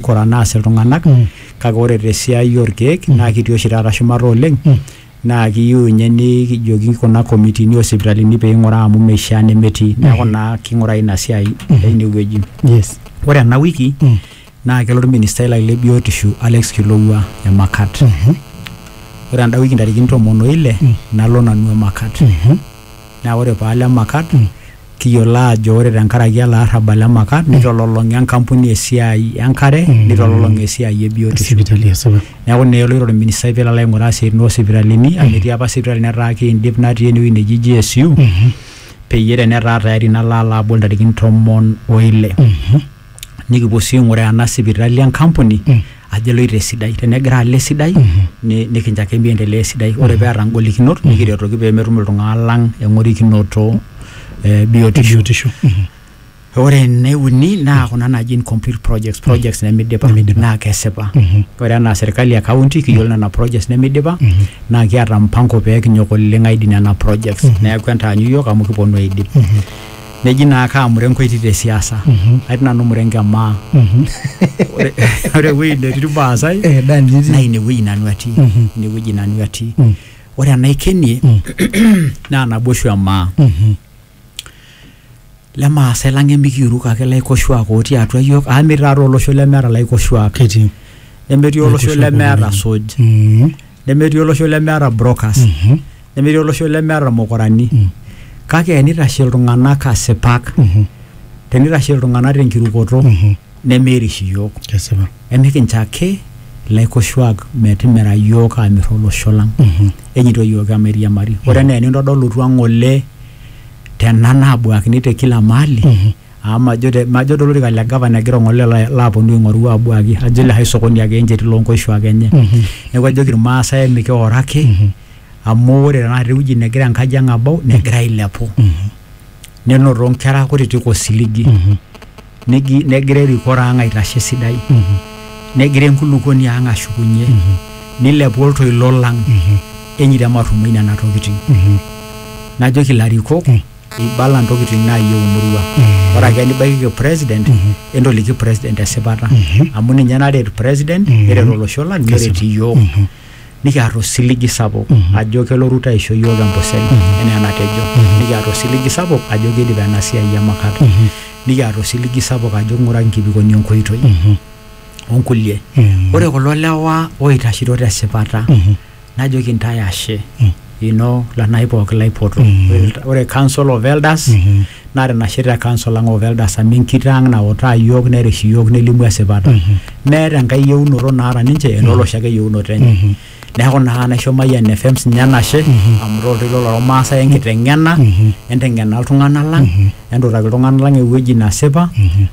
kora naas iltung'anak kake ore tesiai orkeek naa kitii oshi taata shumata oleng naa kiyieu ninye nikijoki kuna komitini osipitalini peing'uraa amu meishia nemetii neeku naa king'urai ina siai einewueji yes ore ena wiki naa kelo orministai lai le biotisho Alex Kilowua emakat ore enda wiki ntarikini tomon oile nalo nanu emakat naa ore paalo emakat kiyiolo aajo ore tenkaraki ele arrabal le maka nitololong'a enkampuni esiai enkare nitololong'a esiai e biotisho sipitali esipa neeku naa eloito orministai pelo alo aing'uraa isiaitin osipitalini amu etii apa sipitali netaa kiindip natii enewueji neji GSU peyie tenetaa tayari nalo alo abol intarikini tomon oile. nikipuo sii aing'uraa ena sipitali enkampuni ajo eloito esidai tenegira alo esidai ni- nikincho ake miendelea esidai ore peeta ngolikinot nikiretoki pemetum iltung'anak lang eng'orikinoto eh, biotisho biotisho ore ene uni naa kuna naji incomplete projects projects nemidipa Nemidipa. naa kesipa ore enaa serkali e county kiyiolo nena projects nemidipa naa kiata mpango pee kinyok oleng aidip nena projects neeku entaanyu yiok amu kiponu aidip neji naa kaa murengo etii te siasa Mhm. atii nanu murengo emaa Mhm. Ore- ore ewueji netii irmaasai Eh, Dani, nitii. naa inewueji nanu atii Mhm. inewueji nanu atii Mm. ore enaikenie Mm. naa naboishu emaa Mhm. lemaasai lang emikiuruk ake laikoshuak otii atua yiok amu metii taata olosho lemeeta laikoshuak Ketii. nemetii olosho Laikoshuak lemeeta otii. suj Mhm. nemetii olosho lemeeta brokers Mhm. nemetii olosho lemeeta irmukurani Mm. kake enitashe iltung'anak asipak Mhm. tenitashe iltung'anak tenkirukoto Mhm. nemeirish iyiook Kesipa. emikincho ake ilaikoshuak metimira iyiook aamir olosho lang Mhm. enyito iyiook emairiamari ore enaa enintodolutua ng'ole tena naabuakini te kila mahali Mhm. Amu majo te majo to lorika le gavana egira ong'ole la laaponu aing'oru aabuaki ajo ele hai sokoni ake encheti loo nkoshuak enye. Neeku ajoki irmaasai mikioro ake amu ore tenakata ewueji negira enkaji ang' abau negira ailepu. Nenotito nkera kutitik osiligi, negi negira erikore ang' aitashe esidai, negira enkulukoni ang' ashukunye, nilepu oltoilo lang' enye iriamarrumoyu nena tokitin. Najoki ilarikok ibala ntokitin naayieu emurua ore ake nibaikiki president entoliki president esipata amu ninye naret president neret olosho lang neret iyiook nikiata osiligi sapuk ajo kelo Ruto aisho iyiook empusel enaa enatejo nikiata osiligi sapuk ajo kiidip ena siai e makat nikiata osiligi sapuk ajo ing'ura nkibikoni enkoitoi onkulie ore kulo lewa oitashito tesipata najoki ntae ashe ino lanai pooki laipoto Ore- ore council of elders naa tinashe te council ang of elders amu enkito ang nautaa yiok nerish yiok nelimu esipata meeta enkae yieunoto naata ninche enolosho ake yieunoto enye neeku naa naisho Mayian FM sinye enashe amu toltoilo lormaasai enkiteng'ena enteng'ena iltung'anak lang entutaki iltung'anak lang ewueji nasipa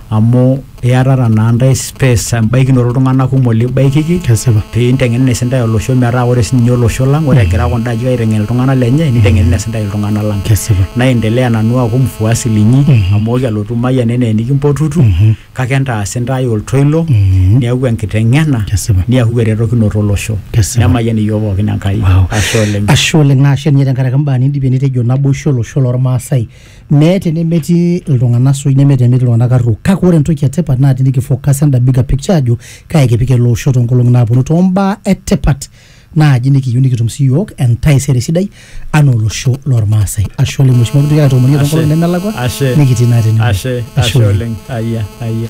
amu Iatata naa ntae space embaikinoto iltung'anak kumok libaikiki Kesipa. pee inteng'enene sintae olosho metaa ore sininye olosho lang ore egira kunda ajijik aiteng'en iltung'anak lenye niteng'enene sintae iltung'anak lang Kesipa. naendelea nanu aaku mfuasi linyi amu ooki alotu mayian enaa enikimpotutu kake entaas intae oltoilo niaku enkiteng'ena Kesipa. niaku eretokinoto olosho Kesipa. nemayian iyiook pookin Enkai Wow. ashe oleng Ashe oleng naa ashe ninye tenkaraki imbaa nindipie nitejo naboisho olosho lormaasai mee tenemetii iltung'anak suj neme tenemetii iltung'anak arruok kake ore entoki etipat naa tinikifocus enda bigger picture ajo kae kipik ele osho toonkolong'i naaponu tombaa etipat naaji nikiyieu nikitum siyiok entaisere sidai anaa olosho lormaasai ashe oleng mheshimiwa kitoki aitoomonie toonkolong'i nemelakua Ashe. nikitii naa tene Ashe, ashe oleng. Ayia, ayia.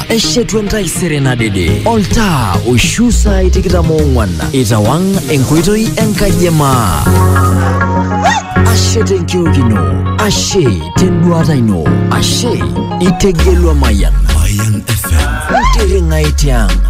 eshetu entaisere nadede oltaa oishu saai tikitam oong'wan itawang' enkoitoi enkaji e maa ashe tenkiokino ashe tenduata ino ashe itegelua mayan Mayan FM. ntiring'ai tiang'